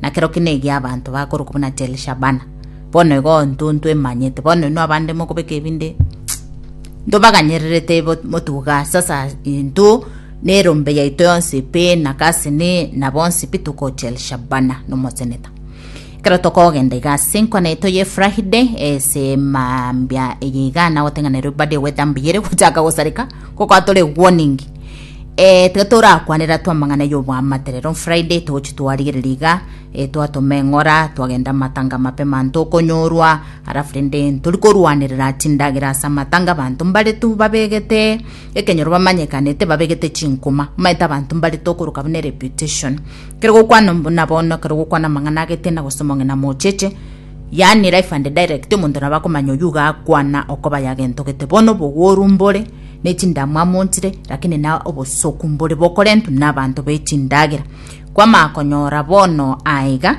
na kero kende egia abanto bakorokwa buna Tel-Shabana. Bono igo intwe ntwemanyete, bono inwe abande mokobeka ebinde ntobaganyererete ibo motuga, sasa intwe na erombe yaito yonsi pi, na Kasini, na bonsi pi toko Tel-Shabana nomoseneta. Ekero tokogenda iga ase enkwana yaito ya Efrahide, ase mambia eye iga nagoteng'anerwa ebadi egwete Ambiyeli gochaka gosareka, gokwa tore warning. Eh, tiga torakwane rato amang'ana y'oboamate rero on Friday togochi twarigereria iga eh, twatoma eng'ora twagenda amatanga mape manto okonyorwa alafu rende ntori korwanerera chindagera ase amatanga abanto mbare tu babegete ekenyoro bamanyekanete babegete chinkuma omanyete abanto mbare tu okoroka buna reputation kero gokwana buna bono kero gokwana amang'ana agete na gose omong'ina mocheche yani life and direct omonto nabo akomanya oyu iga akwana okoba yagentogete bono obogoru mbore ne chindamwamu montire, lakini na obosoku mbore bokorentwe n'abanto be chindagera. Kwamanya konyora bono aiga,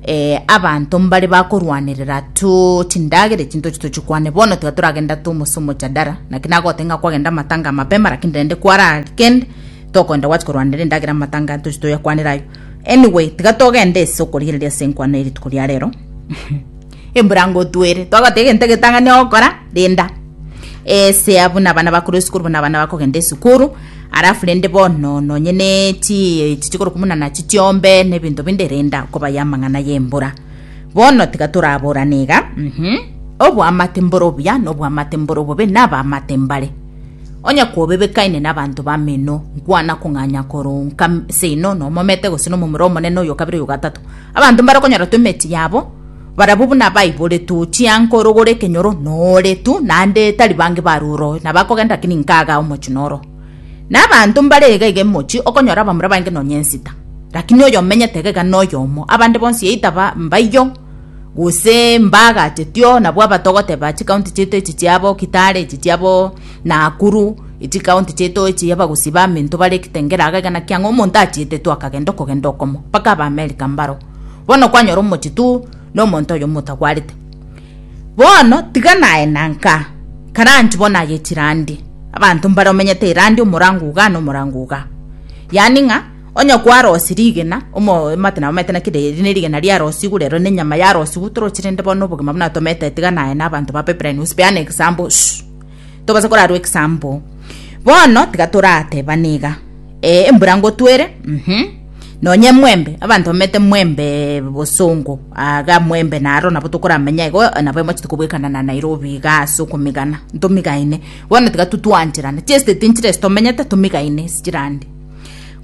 eh, abanto mbare bakorwanerera tu chindagera echi ntochi tochikwane bono tiga toragenda tu omose omochadara naki nagote ng'a kwagenda amatanga mapema lakini rende kwaragende tokoenda gwachi korwanera endagera amatanga ntochi toyakwanera ayo anyway tiga togende ase okorigereria ase enkwano erituko ria rero Embura ngotwere togota egento egetang'ani ogokora renda esea buna abana bakore esukuru buna abana bakogenda esukuru alafu rende bono nonye ne chi echi chikoro kumuna nachi chiombe ne ebinto binde renda kobaya amang'ana y'embura bono tiga toraborane iga mhm obwamate mbore obuya na obwamate mbore obobe na abamate mbare onye kobebekaine na abanto bameno nkwana kong'anya koronka seino nomomete gose nomomura omonene oyo okabere oyo ogatato abanto mbare okonyora toemeti yabo Barabwo buna baiboretwe ochia nkorogora ekenyoro nore tu, naende tari bange bare oroo, na bakogenda lakini nkagaa omochie noro. Na abanto mbare iga iga emochie, okonyora abamura bange nonya ensita, lakini oyo omenyete iga iga noyomo, abande bonsi either ba mbaiyo, gose mbaagachetyoo, nabwo abatogote ba chikaunti chiaito echi chiabo Kitale, echi chiabo Nakuru, chikaunti chiaito echi abagusii ba minto bare Kitengela iga iga naki ang'o omonto achietetwe akagenda okogenda okomo, mpaka aba America mbaro. Bono kwanyora omochie tu nomonto oyo motagwarete. Bono tiga naye nanka karanch bono agechi randi. Abanto mbare omenyete irandi omorango uga na omorango uga. Yani ng'a onye kwarosi rigena omo omate na omete naki riri ne rigena ria rosi igure ero ne nyama ya rosi igutorochire nde bono obogima buna tomete tiga naye na abanto ba pipeline usipeane example. tobase korarwa egesambo. Bono tiga toratebane iga, Ee, embura ngotwere, mhm, nonye emwembe, abanto bamete emwembe bosongo, aga mwembe naro nabo tokoramenya igo, nabo emochete kobwekana na Nairobi iga ase okomigana, ntomigaine. Bono tiga totwancherane, chiestate nchire ase tomenyete, tomigaine ase chirande.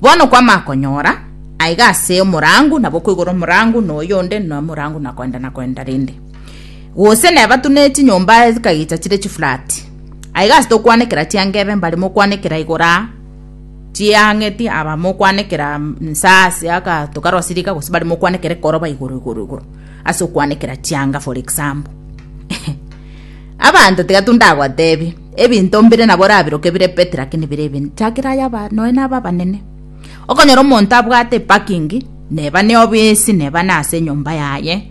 Bono kwama konyora, aiga ase omorango, nabo koigora omorango na oyonde, na omorango na koenda na koenda rende. Gose nebatunere chinyomba chikagicha chire chifurati. Aiga ase tokwanekera chiangebe mbare mokwanekera igoro aa, chiang'eti aba mokwanekera inse aase aka tokarwase riika gose bare mokwanekera ekoroba igoro igoro igoro ase okwanekera chianga for example. Abanto tiga tundagotebi, ebinto mbire nabo orabiroke bire petty lakini bire ebinto chakera aye aba nonya na aba abanene. Okonyora omonto abwate eparking neba ne obisi neba nase enyomba yaye,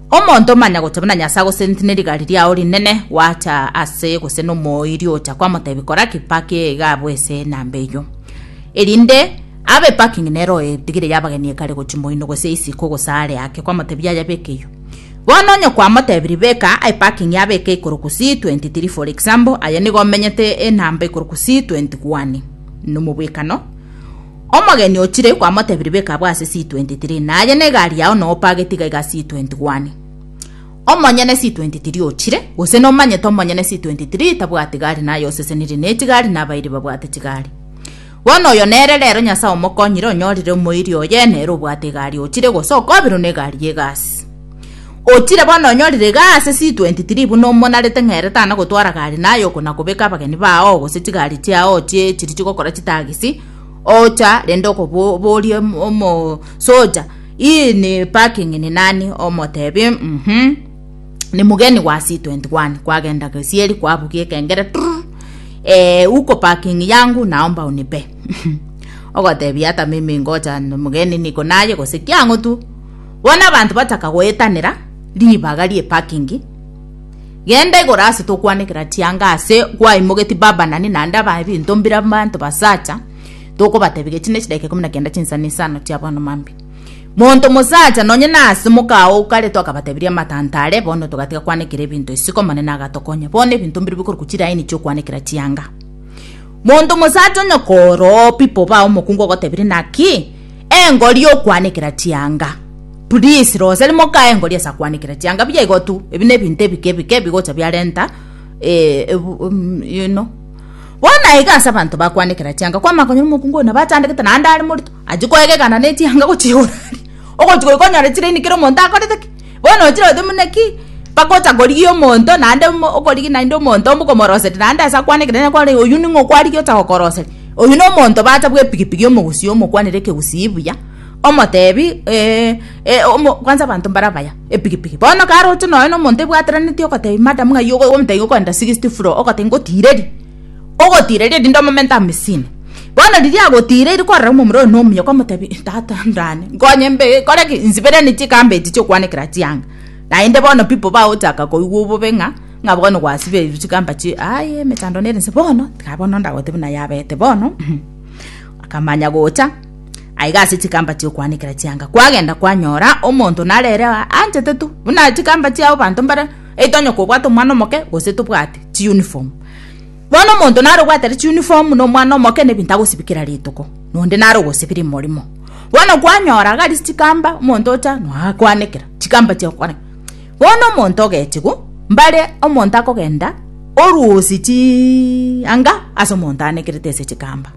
Omonto omanya gocha buna Nyasae agoseneti ne rigari riao rinene, gwacha aase gose nomoiri ocha kwamotebi kora ki paki eye iga abwe ese na mbeiyo. Erinde abe paki ng'ina ero edigire y'abageni ekare gochi moino gose isiko gose aare ake kwamotebi yaya bekeiyo. Bono onye kwamotebirie beka aye paki ng'ia beke ikoroku C23 for example aye nigo omenyete enamba ikoroku C21 nomobwekano, Omogeni o Tire kwamotebirie, Beka abwo ase C23, na aye negari yao noope agetiga iga C21. Omonyene C23 o Tire, gose nomanyete omonyene C23 tabwati gari na ayosesenirie ne chigari na abairi babwate chigari. Bono oyo nere rero Nyasae omokonyire onyorire omoiri oye nere obwate egari o Tire gose okobirwe negari yegasi. Otire bono onyorire iga ase C23 buna omonarete ng'a ere tana gotwara gari naye oko na kobeka abageni bao gose chigari chiao ochie chiri chigokora chitagisi ocha rende okoboria omosoja ii ni parking ni nani omotebi uhum ni mugeni wa C21 kwagenda gesieri kwabugia ekengere trrrr eeh uko parking yangu naomba unipe ogotebia ata mimi ngocha mugeni niko naye gose kiang'o tu Bono abanto bataka goetanera ribaga rie pakingi, genda igoro ase tokwanekera chianga ase gwaimogetie baba na nina ande abae binto mbire abanto basacha tokobatebia gechie ne chidaika ikomi na kenda chinsa ne isano chia bono mambi monto mosacha nonye nase mokao okaretwa akabatebiria amatanta are bono togatiga kwanekera ebinto isiko omonene agatokonya bono ebinto mbire bikorokwa chiraini chiokwanekera chianga monto mosacha onye koroo pipo ba omokungu ogotebirie naki Engori yokwanekera chianga. Please rosa rimo kae engori ase kwanekera chianga buya igo tu. Ebi ne ebinto ebike ebike ebigocha biarenta eh, you know. Bono na iga ase abanto bakwanekera chianga kwamanya konyora omokungu oyo nabo achandegete naende are morito, achia koegekana ne chianga gochigora aria. Ogochi goika onyore chire ini kera omonto akorete ki? Bono ochire goteba, Buna ki bagocha korigia omonto naende okorigia naende omonto okomoroseria naende ase akwane ekerecha kware, oyio ning'o okwarigia ocha gokoroseria? Oyio nomonto bacha bw'epigipigi omogusii omokwanere ekegusii buya, omotebi kwanza abanto mbare abaya, epigipigi. Bono karoche nonye nomonto ebwatanetie ogotebia madam ng'ai ogo omonto iga okogenda sixth floor ogoteba ngotirerie. ogotiireria erinde omomento amisini. Bono riria agotiireiri kwarora omomura oye nomuya okamotebia tata ndane nkonye mbe kore ki nsiberanie chikambe echi chiokwanekera chianga naende bono pipo bagochaka koigwa obobe ng'a ng'a bono gwasibeirwe chikamba chie aye emechando nere nse bono tiga bono ndagotebie naye abete bono akamanya gocha aiga ase chikamba chiokwanekera chianga kwagenda kwanyora omonto narere aa anchete tu buna chikamba chiago abanto mbare eitwe onye kobwate omwana omoke gose tobwati chiuniform. Bono omonto nare ogwatera chiunifomu na omwana omoke na ebinto agosibikera rituko, na onde nare ogosibiri morimo. Bono kwanyora iga arise chikamba, omonto ocha noakwanekera chikamba chiago kwane. Bono omonto ogechigwa, mbare omonto akogenda oruusi chianga ase omonto anekerete ase chikamba.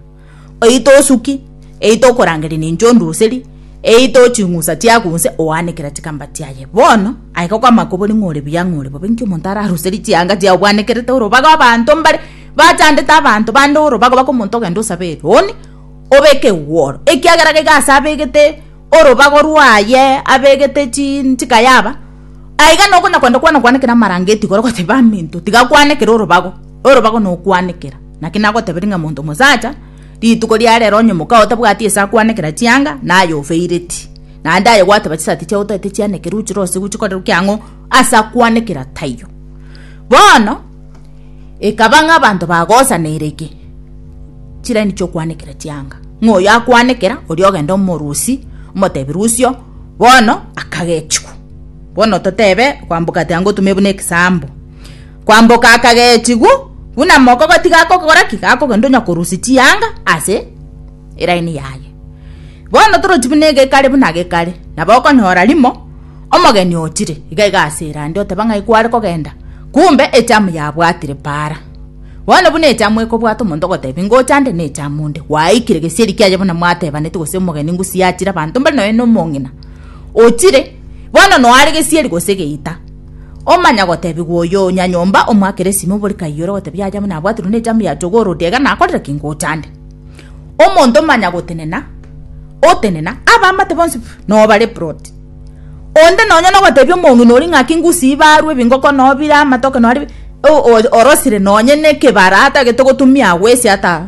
Oito osuki, eito okorangeria ninche onduseri, eito ching'usa chiago onse oanekera chikamba chiaye. Bono, aye gokoamakobori ng'a ore buya ng'a ore bobe, inki omonto araruserie chianga chiao bwanekerete orobaga abanto mbare bachandete abanto bande orobago bakomonto ogende osabe eroni, obeke egworo, ekiagera gaiga ase abegete orobago rwaye abegete chinchika yaba, aiga nokona kwenda kwana okwanekera amarangeti igoro goteba aminto tiga kwanekere orobago, orobago nokwanekera. Naki nagoteberia ng'a monto mosacha rituko ria rero onye moka otabwati ase akwanekera chianga naye ofeireti, naende aye gwateba chisati chiao otaete chianekerwe ochirosiwu chikoreru kiang'o ase akwanekera taiyo. Bono. Ekaba ng'a abanto bagosaneire ki? Chilaini chi'okwanekera chianga. Ng'a oyo akwanekera, oria ogenda omorusi, omotebi rusio, bono akagechigwa. Bono totebe kwamboka ati ango otume buna ekisambo. Kwamboka akagechigwa, buna mokogo tigakokora ki? Gakogenda onya korusia chianga ase elaini yaye. Bono torochi buna egekare buna gekare, nabo okonyora rimo omogeni ochire, iga iga ase erande oteba ng'ai kware kogenda, kumbe echamu yabwatire paara. Bono buna echamu ekobwata omonto ogotebi ngocha nde nechamu onde, gwaikire gesieri kiaye buna mwatebaneti gose omogeni ngusi yachire abanto mbare nonya nomong'ina ochire bono noare gesieri gose geita, omanya gotebigwa oyo nyanyomba omwakere esimo obore kaiyo ore goteba yaye buna abwatirwe nechamu ya chogora odiege nakorire ki ngocha nde. Omonto omanya gotenena, otenena, abamate bonsi no bare plot. Onde nonya no gotebia omong'ina ori ng'aki ngusi ibarwe bingoko no bire amatoke no ari orosire nonye ne kebara atagete gotumia agwesi ata